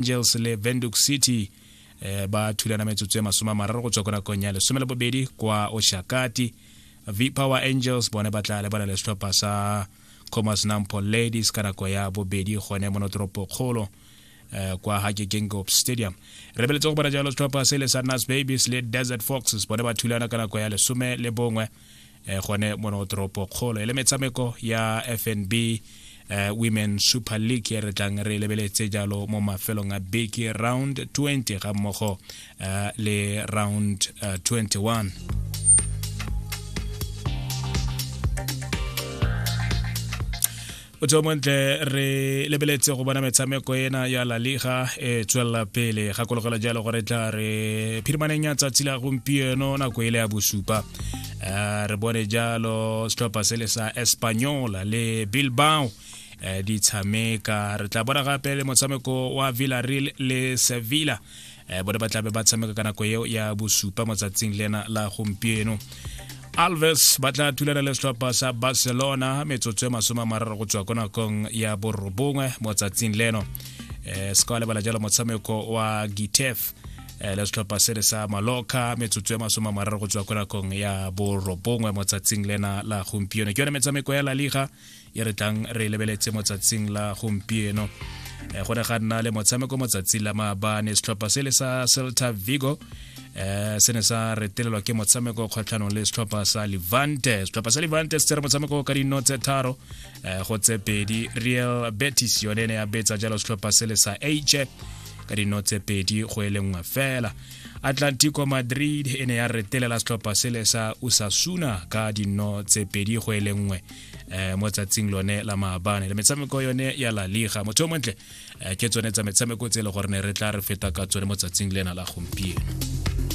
angels le venduc city eh, ba thulana metsotso ya masome a mararo go tswa ko nakong ya lesome le bobedi kwa oshakati v power angels bone ba tla lebana le setlhopha sa comas nampo ladies ka nako ya bobedi gone mo notoropo kgolo eh, kwa hake gengop stadium re beletse go bona jalo setlhopha se le sa nas babies le desert foxes bone ba thulana ka nako ya lesome le bongwe eh, gone mono toropo kgolo e le metshameko ya fnb eh, women super league e re tlang re lebeletse jalo mo mafelong a beke round 20 ga mmogo eh, le round uh, eh, 21 Thank you. o tseo montle re lebeletse go bona metshameko ena ya la liga e tswelela pele gakologela jalo gore tla re phirimaneng ya tsatsi la gompieno nako e le ya bosupa eh, re bone jalo setlhopha se le sa espanyola le bilbao eh, di tshameka re tla bona gape le motshameko wa villareal le sevilla um bone ba tlabe ba tshameka ka nako eo ya bosupa mo tsatsing le ena la gompieno alves ba tla thulana le setlhopha sa barcelona metsotso e masome a mararo go tswa ko nakong ya borobongwe mo tsatsing leno um se ka wa lebala jalo motshameko wa gitef Eh, le setlhopha se le sa maloka metsotso e masome a mararo go tswa ko nakong ya borobongwe mo tsatsing lena la gompieno ke yone metshameko ya la liga e re tlang re lebeletse motsatsing la gompieno eh, go ne ga nna le motshameko motsatsi la maabane setlhopha se le sa celta vigo eh se ne sa retelelwa ke motshameko kgwetlhanong le setlhopha sa levante setlhopha sa levante se tsere motshameko ka dino tse tharo eh, go tse pedi real betis yone ne ya betsa jalo setlhopha se le sa h ka dino tse pedi go e le nngwe fela atlantico madrid e ne ya retelela setlhopha sele sa usasuna ka dino tse pedi go e le nngwe eh, mo tsatsing lone la maabane le metshameko yone ya la liga motho yo montle eh, ke tsone tsa metshameko tse e le gore ne re tla re feta ka tsone mo tsatsing lena la gompieno